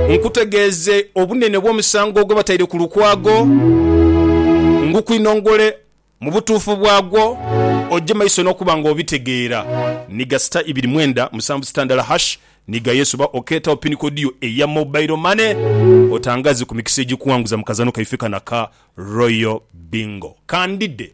Nkutegeeze obunene bw'omusango gwe bataire ku lukwago, ngukwinongole mu butuufu bwagwo, oje maiso n'okuba nga obitegeera. Ni ga sita ibiri mwenda musanvu sita ndala hash ni ga yes oba okeetagho pin code yo eya mobile money otangaaze ku mikisa egikuwanguza mu kazanho kaife kano aka Royal Bingo. Kandide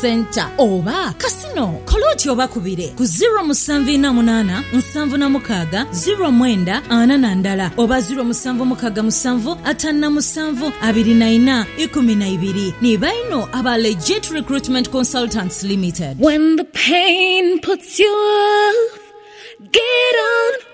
Centre oba Casino, kola oti obakubire ku ziro musanvu ina munana nsanvu na mukaga ziro mwenda ana na ndala oba ziro musanvu mukaga musanvu atanu na musanvu abiri na ina ikumi na ibiri. Ni baino aba Legit Recruitment Consultants Limited. When the pain puts you off, get on.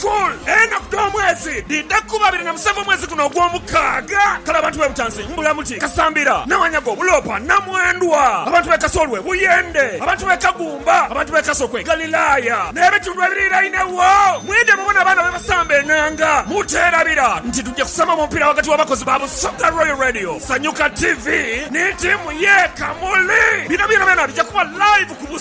Col. Enaku dh'omwezi dhidha kuba abiri na musanvu omwezi guno ogw'omukaaga. Kale abantu b'e Butansi mbula muti Kasambira, Nawanyago, Buloopa, Namwendwa, abantu b'e Kasolwe, Buyende, abantu b'e Kagumba, abantu b'e Kasokwe, Galilaya n'ebitundu ebiriirainegho mwidhe mubone abaana bwe basamba enanga. Muteerabira nti tugya kusamba mu mupiira ghagati w'abakozi ba Busoga Royal Radio, Sanyuka TV ni tiimu y'e Kamuli. Bino byonabyona bigya kuba live ku.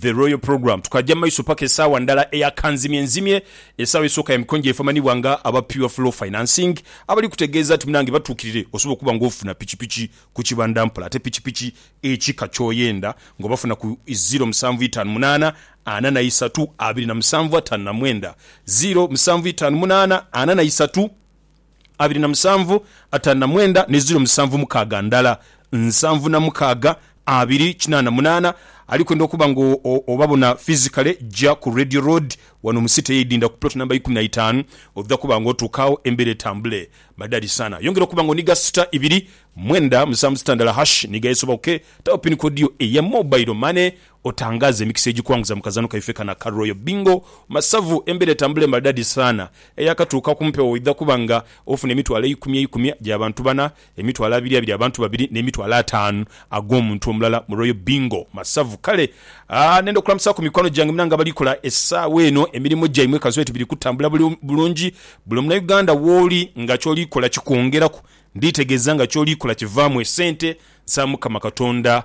The Royal Programme, Tukaja mu maiso paka esaawa ndala eya kanzimye nzimye, esaawa esooka ya mikonjo efu amanhibwa nga aba Pure Flow Financing abali kutegeeza nti munange batuukirire osobola okuba nga ofuna pikipiki ku kibanda mpola ate pikipiki ekika ky'oyenda nga obafuna ku ziro musanvu itaanu munaana ana na isatu abiri na musanvu ataanu na mwenda, ziro musanvu itaanu munaana ana na isatu. abiri na musanvu, ataanu na mwenda, ni ziro musanvu mukaaga ndala, nsanvu na mukaaga, abiri kinaana munaana. Ali kwenda okuba nga obabona physically, ja ku Radio Road wano mu City ey'eidinda ku plot number ikumi na itaanu. Odha kuba nga otuuka agho embeera etambule madhali sana. Yongera okuba nga oniga sita ibiri, mwenda, musanvu sita ndala hash niga esoboke. Tawo pin code yo eya mobile money Otangaaze emikisa egikwanguza mu kazaano kaife kano aka Royal Bingo. Masavu, embeera etambula emaridadi saana eyakatuuka ku mpewo oidha kuba nga ofuna emitwalo eikumi eikumi gya bantu bana, emitwalo abiri abiri abantu babiri n'emitwalo ataanu ag'omuntu omulala mu Royal Bingo Masavu. Kale nenda okulamusaaku mikwano gyange mwena nga abali kola esaawa eno emirimo gyaimwe kansobe nti biri kutambula bulungi. Buli omunauganda wooli nga kyoli kola kikwongeraku, nditegeza nga kyoli kola kivaamu esente. Nsaba Mukama Katonda